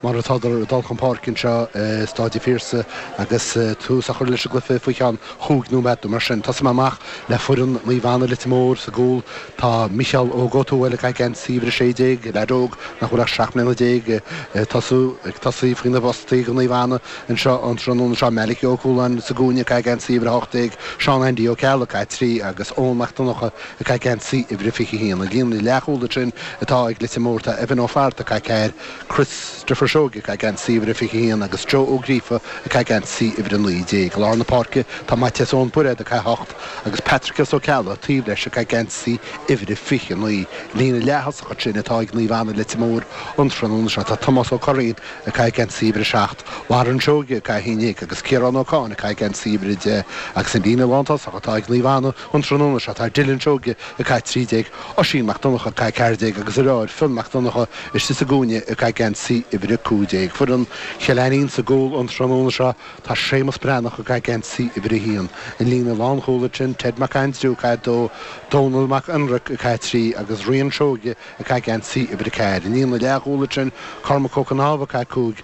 Mar atádar ag dul chun páirce anseo i Stáid a' Phiarsaigh agus tús á chur leis an gcluiche faoi cheann chúig nóiméad nó mar sin. Tosóidh mé amach le foireann Naomh Anna, Leitir Móir, sa gcúl tá Micheál Óg Ó Tuathail ag caitheamh geansaí uimhir a sé déag, leaid óg nach bhfuil ach seacht mbliana déag ag tosaí faoi na postaí do Naomh Anna anseo an tráthnóna seo, Malachy Ó Cualáin sa gcúinne ag caitheamh geansaí uimhir a hocht déag, Seán Aindí Ó Ceallaigh ag caitheamh a trí agus Eoin Mac Donnacha ag caitheamh geansaí uimhir a fiche haon. An líne leathchúil ansin atá ag Leitir Móir tá Evan Ó Flatharta ag caitheamh a ceathair Christopher Seoige ag caitheamh geansaí uimhir a 21 agus Joe Ó Gríofa ag caitheamh geansaí uimhir a 19. I lár na páirce tá Maitias Eoin Bairéad ag caitheamh a 8 agus Patricios Ó Ceallaigh taobh leis ag caitheamh geansaí uimhir a 29. An líne leath-thosach ansin atá ag Naomh Anna Leitir Móir, an tráthnóna seo. Tá Tomás Ó Curraoin ag caitheamh geansaí uimhir a 7, Warren Seoige ag caitheamh a 11 agus Ciarán Ó Cadhain ag caitheamh geansaí uimhir a 10 agus an líne lántosach atá ag Naomh Anna, An tráthnóna seo tá Dylan Seoige, ag caitheamh 13, Oisín Mac Donnacha, ag caitheamh 14, agus a dheartháir Fionn Mac Donnacha istigh sa gcúinne ag caitheamh geansaí uimhir 15. Foireann Chill Ainnín sa gcúl an tráthnóna seo tá Séamus Breathnach ag caitheamh geansaí uimhir 1. An líne lánchúil ansin Ted Mac Aindriú ag caitheamh 2, Dónal Mac Ionraic ag caitheamh 3, agus Rian Seoige ag caitheamh geansaí uimhir 4. An líne leathchúil ansin Cormac Ó Cnámha ag caitheamh 5,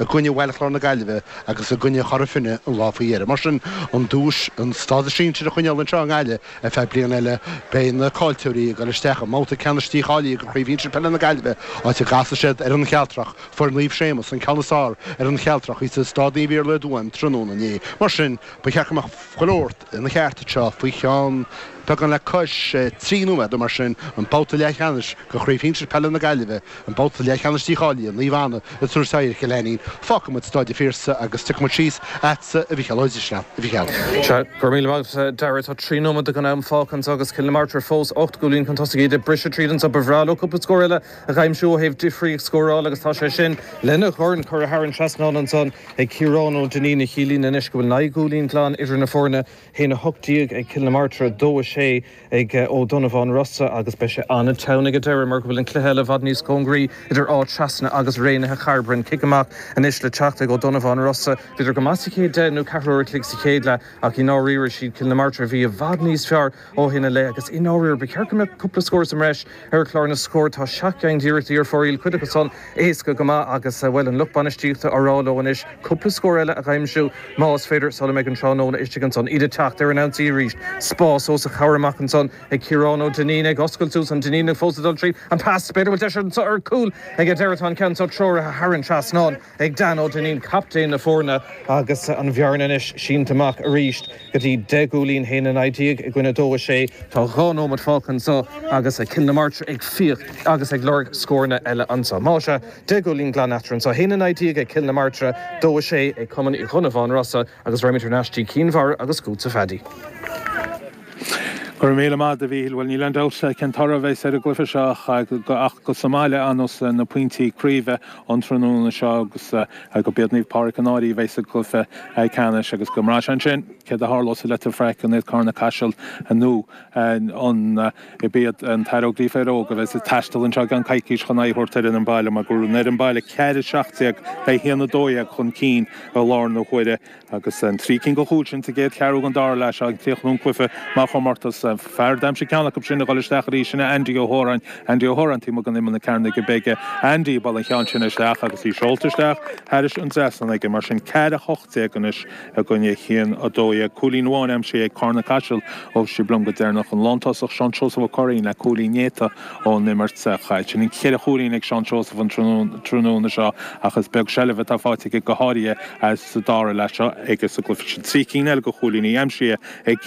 i gcoinne Bhaile Chláir na Gaillimhe agus i gcoinne Chora Finne an lá faoi dheireadh. Mar sin, an duais, an stádas sinsir a choinneáil anseo i nGaillimh ar feadh bliana eile, beidh na caillteoirí ag dul isteach i mbabhta ceannais dícháilithe de Chraobh Shinsir Peile na Gaillimhe, áit a gcasfaidh siad ar An Chealtrach, fuair Naomh Séamus an ceann is fearr ar An Chealtrach, thíos i Stáid Naomh Iarlaith i dTuaim, tráthnóna inné. Mar sin, ba cheart go mbeadh go leor ina cheart anseo faoi cheann. beagán le cois trí nóiméad nó mar sin an babhta leathcheannais de Chraobh Shinsir Peile na Gaillimhe, an babhta leathcheannais dícháilithe, Naomh Anna ag tabhairt aghaidh ar Chill Ainnín. Fágfaidh muid Stáid an Phiarsaigh agus tiocfaidh muid síos agatsa, a Mhicheál. Oidhre Shleasa, a Mhicheál. Sea, go raibh míle maith agat, a Dhara. Tá trí nóiméad den am fágtha anseo agus Cill na Martra fós ocht gcúilín chun tosaigh. Iad ag briseadh tríd anseo. Ba bhreá leo cúpla scór eile a aimsiú ó thaobh difríocht scórála agus tá sé sin lena dhorn curtha thar an trasnán ansan ag Ciarán Ó Duinnín, a chiallaíonn anois go bhfuil naoi gcúilín glan idir na foirne. 1, 18 ag Cill na Martra, 2, 6 ag Ó Donnabháin Rossa agus beidh sé ana-theann ag an deireadh mar go bhfuil an cluiche eile i bhfad níos cóngaraí idir Áth Trasna agus Raonaithe Chairbre. Cic amach anois le teacht ag Ó Donnabháin Rossa. Bhíodar go maith sa chéad deich nó ceathrú uair an chloig sa chéad leath ach i ndáiríre siad Cill na Martra a bhí i bhfad níos fearr ó shin i leith agus i ndáiríre ba cheart go mbeadh cúpla scór sa mbreis Ar chlár na scór tá seacht gceann d'iarrachtaí ar fóraoil, cuid acu san éasca go maith agus, bhuel, an lucht bainistíochta á rá leo anois cúpla scór eile a aimsiú, más féidir, sula mbeidh an tráthnóna istigh ansan. Iad ag teacht ar an ionsaí arís. Spás os a chomhair amach ansan ag Ciarán Ó Duinnín ag oscailt suas, an Duinníneach fós ag dul tríd an pas, b'fhéidir bhfuil deis anso ar chúl ag an deireadh tá an ceann so treoraithe thar an trasnán. Ag Dan Ó Duinnín, captaen na foirne agus an bhearna anois sínte amach arís go dtí deich gcúilín haon a naoi déag i gcoinne dó a sé. Tá dhá nóimeat fágtha anseo agus Cill na Martra ag fiach agus ag lorg scóranna eile anseo. Más ea, deich gcúilín glan eatarthu anseo, haon a naoi déag ag Cill na Martra, dó a sé ag Cumann Uí Dhonnabháin Rosa agus raghaimid thar n-ais go dtí Cinn Mhara agus chugatsa a Pheaidí. Go raibh míle maith agat a Mhichíl. Bhuel, níl aon dabht cén toradh a bheas ar an gcluiche seo ach gur sa mbaile a fhanfas na pointí craoibhe ón tráthnóna seo agus go b'iad Naomh Pádraig an Áirí a bheas sa gcluiche ceannais agus go mbraithfeadh ansin céard a tharlódh sa Leitir Fraic an iad Carna Caiseal nó an b'iad an tAire Óglaigh Fair Óg a bheas ag taisteal anseo i gceann coicís chun aghaidh a thabhairt ar fhoireann an bhaile mar go raibh an fhoireann baile ceathair a seacht déag in aghaidh a haon a dó dhéag chun cinn i lár na huaire Agus an trí cinn de chúil sin sa gcéad cheathrú den dara leath seo ag críochnú an chluiche mar chomórtas. Fear a d'aimsigh ceann acu sin ag dul isteach arís, sin é Andy Ó hÓráin. Andy Ó hÓráin taobh amuigh d'imeall na cearnóige bige. Andy a bhuail an ceann sin isteach agus í seolta isteach thairis an trasnán aige. Mar sin ceathair a hocht déag anois i gcoinne haon a dó dhéag. Cúilín amháin aimsithe ag Carna Caiseal ó bhí sibh liom go deireanach. An lántosach Seán Seosamh Ó Curraoin le cúilín néata. ón imirt. Chaill siad an ceithre chúilín ag Seán Seosamh an tráthnóna seo ach is beag seilbh atá faighte aige go háirithe insa dara leath seo agus ghlacfaidh siad trí cinn eile de chúilíní aimsithe ag